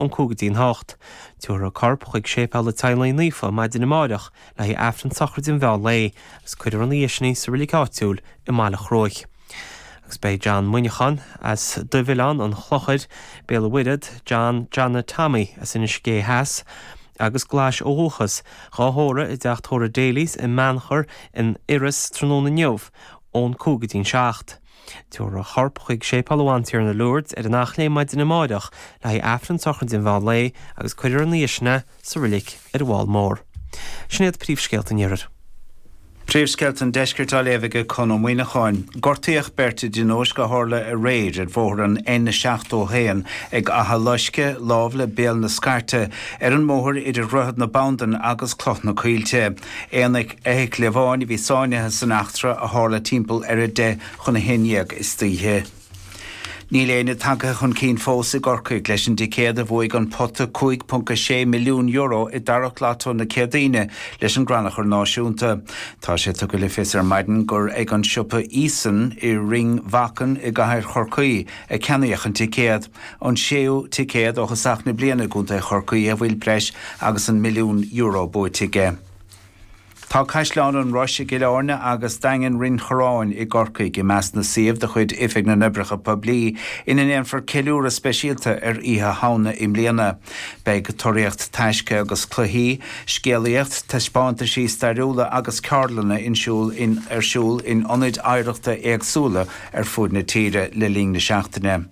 ón cúig go dtí an hocht. Tiúrfar a corp chuig Séipéal an Teaghlaigh Naofa maidin amárach le haghaidh Aifreann sochraide an mheán lae agus cuirfear í ina dhiaidh sin sa reilig áitiúil i mBaile Chruaich. Agus beidh John Muineacháin as Dubhoileán an Chlochair, Béal an Mhuirthead, John Johnny Tommy as Inis Gé Theas agus Glais ó dhúchas, dhá thórramh i dteach tórraimh Daily's i mBeannchar in Iorras tráthnóna inniu ón cúig go dtí'n seacht. Tabharfar a chorp chuig Séipéal Ár mBantiarna Lourdes ar an Eachléim maidin amáireach le haghaidh Aifreann Sochraide an Mheán Lae agus cuirfear ina dhiaidh sin é sa roilig ar an bhFál Mór. Sin iad príomhscéalta an iarthair. Príomhscéalta an Deiscirt á léamh ag Conall Muíneacháin. Gortaíodh beirt i dtionóisc a tharla aréir ar bhóthar an N71 ag Achadh Loisce, lámh le Béal na Scairte, ar an mbóthar idir Droichead na Banndan agus Cloch na Coillte. Aon fheithicil amháin a bhí sáinnithe san eachtra a tharla timpeall ar a deich chun a haon dhéag istoíche. Níl éinne tagtha chun cinn fós i gCorcaigh leis an dticéad a bhuaigh an pota €5.6 milliún i dtarrac Lotto na Céadaoine leis an gCrannchur Náisiúnta. Tá sé tugtha le fios ar maidin gur ag an siopa Eason i Rinn Mhachan i gcathair Chorcaí a ceannaíodh an ticéad. an séú ticéad ó thosach na bliana i gContae Chorcaí, a bhfuil breis agus an milliún euro buaite aige. Tá Caisleán an Rois i gCill Áirne agus Daingean Rinn Chorráin i gCorcaigh i measc na suíomh de chuid Oifig na nOibreacha Poiblí ina ndéanfar ceiliúradh speisialta ar Oíche Shamhna i mbliana. Beidh tóraíocht taisce agus cluichí, scéalaíocht, taispeántaisí stairiúla agus ceardlanna in siúl ar siúl in ionaid oidhreachta éagsúla ar fud na tíre le linn na seachtaine.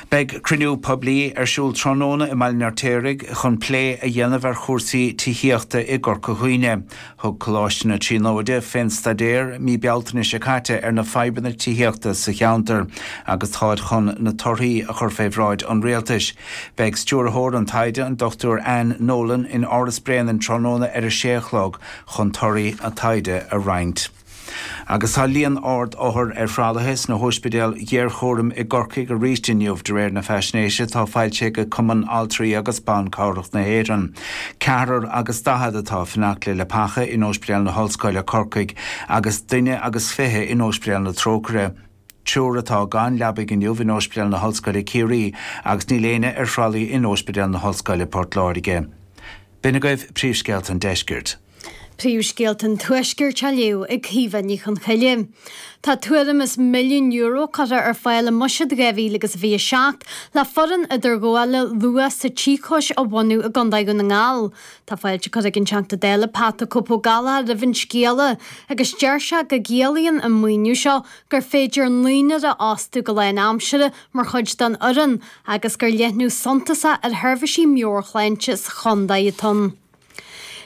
Beidh cruinniú poiblí ar siúl tráthnóna i mBaile an Fheirtéaraigh chun plé a dhéanamh ar chúrsaí tithíochta i gCorca Dhuibhne. Thug Coláiste na Tríonóide fé staidéar mí Bealtaine seo caite ar na fadhbanna tithíochta sa cheantar agus táid chun na torthaí a chur fé bhráid an Rialtais. Beidh stiúrthóir an taighde, an Dr Anne Nolan, in Áras Bréanainn tráthnóna ar a sé a chlog chun torthaí an taighde a roinnt. Agus tá líon ard othar ar thralaithe sna hospidéil ghéarchúraim i gCorcaigh arís inniu, de réir na faisnéise atá fachta ag Cumann Altraí agus Ban Cabhrach na hÉireann. Ceathrar agus daichead atá ag fanacht le leapacha in Ospidéal na hOllscoile, Corcaigh, agus duine agus fiche in Ospidéal na Trócaire. Triúr atá gan leabaidh inniu in Ospidéal na hOllscoile, Ciarraí, agus níl éinne ar thralaí in Ospidéal na hOllscoile, Port Láirge. B'in agaibh príomhscéalta an deiscirt. Príomhscéalta an Tuaiscirt á léamh ag Caoimhe Ní Chonchoille. Tá tuairim is milliún euro curtha ar fáil i mbuiséad 2027 le foireann idirghabhála luath sa tsíocóis a bhunú i gContae Dhún na nGall. Tá fáilte curtha ag an Teachta Dála Pat 'The Cope' Ó Gallchóir roimh an scéala agus deir sé go gciallaíonn an maoiniú seo gur féidir naonúr a fhostú go lán aimsire mar chuid den fhoireann agus gur leathnú suntasach ar sheirbhísí meabhairshláinte sa chontae atá ann.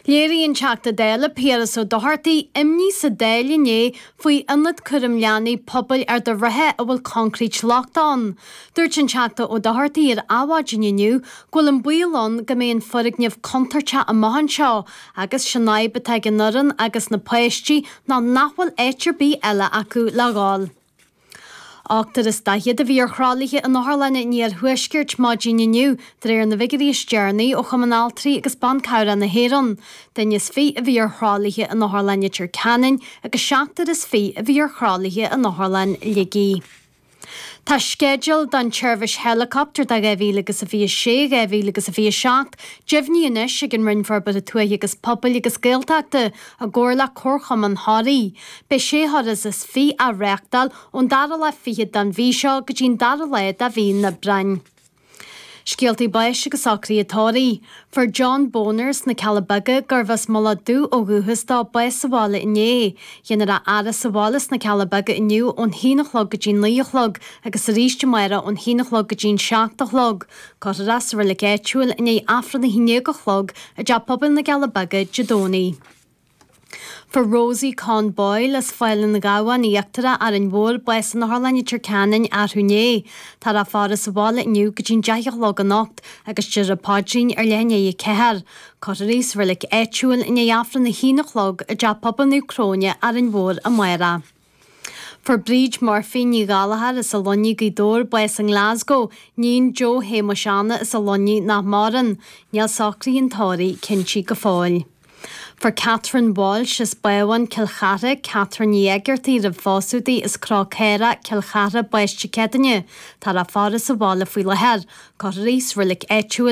Léirigh an Teachta Dála Piaras Ó Dochartaigh imní sa Dáil inné faoi ionad cúram leanaí pobail Ard a' Rátha a bhfuil concrete lochtach ann. Dúirt an Teachta Ó Dochartaigh ar Adhmhaidin inniu go bhfuil an baol ann go mbeidh an foirgneamh contúirteach amach anseo agus sé'n fhadhb atá ag an fhoireann agus na páistí ná nach bhfuil áit ar bith eile acu le dhul. Ochtar is daichead a bhí ar thralaithe in otharlanna an Iarthuaiscirt maidin inniu, de réir na bhfigiuirí is deireanaí ó Chumann Altraí agus Ban Cabhrach na hÉireann. Duine is fiche a bhí ar thralaithe in Otharlann Leitir Ceanainn agus seachtar is fiche a bhí ar thralaithe in Otharlann Shligigh. Tá sceideal don tseirbhís heileacaptair do 2026, 2027 deimhnithe anois ag an Roinn Forbartha Tuaithe agus Pobail agus Gaeltachta I gcomhar le Comharchumann Thoraí, beidh sé thuras is fiche á reáchtáil ón dara lá fichead den mhí seo go dtí an dara lá de mhí an Aibreáin. Scéaltaí báis agus socraithe tórraimh. Fuair John Boner as na Cealla Beaga, gurbh as Mullach Dubh ó dhúchas dó, bás sa bhaile inné. Dhéanfar a fhaire sa bhaile sna Cealla Beaga inniu ón haon a chlog go dtí an naoi a chlog agus arís amárach ón haon a chlog go dtí an seacht a chlog. Cuirfear é sa reilig áitiúil i ndiaidh Aifreann a haon déag a chlog i dTeach Pobail na gCealla Beaga Dé Domhnaigh. Fuair Rosie Conn Boyle as Fál an Ghabhann in Íochtar Árainn Mhóir bás in Otharlann Leitir Ceanainn arú inné. Táthar á faire sa bhaile inniu go dtí an deich a chlog anocht agus déarfar an paidrín ar leath i ndiaidh a ceathair. Cuirfear í sa reilig áitiúil i ndiaidh Aifreann a haon a chlog i dTeach Pobail Naomh Cróine, Árainn Mhór, amárach. Fuair Bríd Murphy, Ní Ghallchóir, as an Luinnigh, Gaoth Dobhair, bás i nGlasgow, níon Joe Shéamuis Anna as an Luinnigh nach maireann. Níl socraithe an tórraimh cinntithe go fóill. Fuair Catherine Walsh, as Bábhún, Cill Chartha, Catherine Ní Éigeartaigh roimh phósadh di, as Cró Caorach, Cill Chartha, bás Dé Céadaoine. Táthar á faire sa bhaile faoi láthair. Cuirfear í sa reilig áitiúil,